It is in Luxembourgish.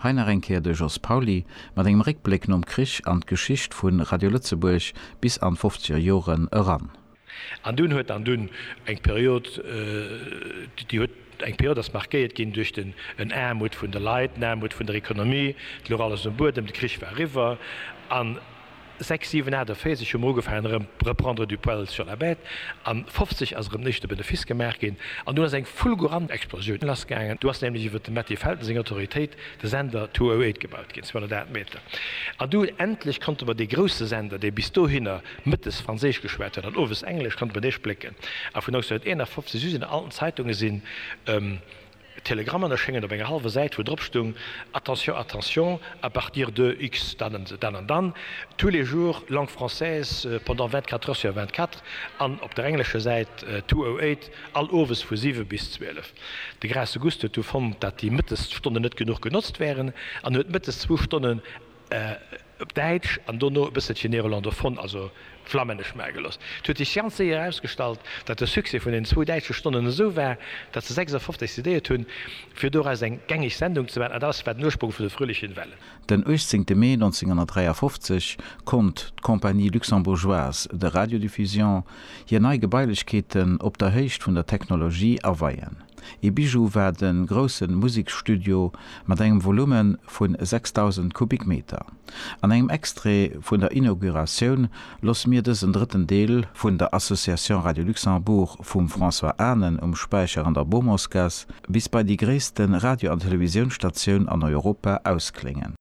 Hei nach eng Kéier de Jos Pauly mat engem Réckbléck nom Krich an d'Geschicht vu Radio Lëtzebuerg bis an d'fofzeger Joren eran. An dunn huet an dunn eng Period, déi huet eng Period ass markéiert ginn duerch den en Aarmut vun de Leit, en Aarmut vun der Economie, et louch alles um Buedem, de Krich war eriwwer an, Sechs, siwen, aacht a véierzeg hu mer ugefaangen erëm reprendre du poil sur la bête, a 50 ass erëm nees de Benefice gemaach ginn, an dunn ass eng fulgurant Explosioun lassgaangen. Du ass nämlech iwwer dem Matti Felten seng Autoritéit de Sender 208 gebaut ginn, 208 Meter, an du endlech konnte mer dee grousse Sender, dee bis dohinner mëttes Franséisch geschwat huet an owes Englesch, konnte mer dee splécken. A vun 1951 u sinn an allen Zeitunge sinn Telegramm an erschéngen op enger hallwer Säit, wou drop stoung, Attention, attention, à partir de X. Dann an dann an dann, Tous les jours, langue française, pendant 24 heures sur 24. An op der englescher Säit, 208, all owes vu 7 bis 12. De Graas Auguste huet du fonnt, dat déi Mëttesstonne net genuch genotzt wären an huet mëttes zwou Stonnen op Däitsch an dono e bësselche néerlandophon, also flammännesch, mageloss. Et huet sech ganz séier erausgestallt, datt de Succès vun den zwou däitsche Stonnen esou war, datt se 56 decidéiert hunn, fir doraus eng gängeg Sendung ze maachen, an datt war den Ursprung vun de fröhlichen Wellen. Den 18 Mee 1953 konnt d'Compagnie luxembourgeoise de radiodiffusion hir nei Gebailechkeeten op der Héicht vun der Technologie aweien. Ee Bijou war de grousse Museksstudio mat engem Volume vu 6.000 Kubikmeter. An engem Extrait vun der Inauguratioun loosse mir dësen drëtten Deel vun der Association Radio Luxembourg vum François Anen um Späicher an der Bourmorsgasse bis bei déi gréisste Radio an Televisiounsstatioun an Europa ausklénge.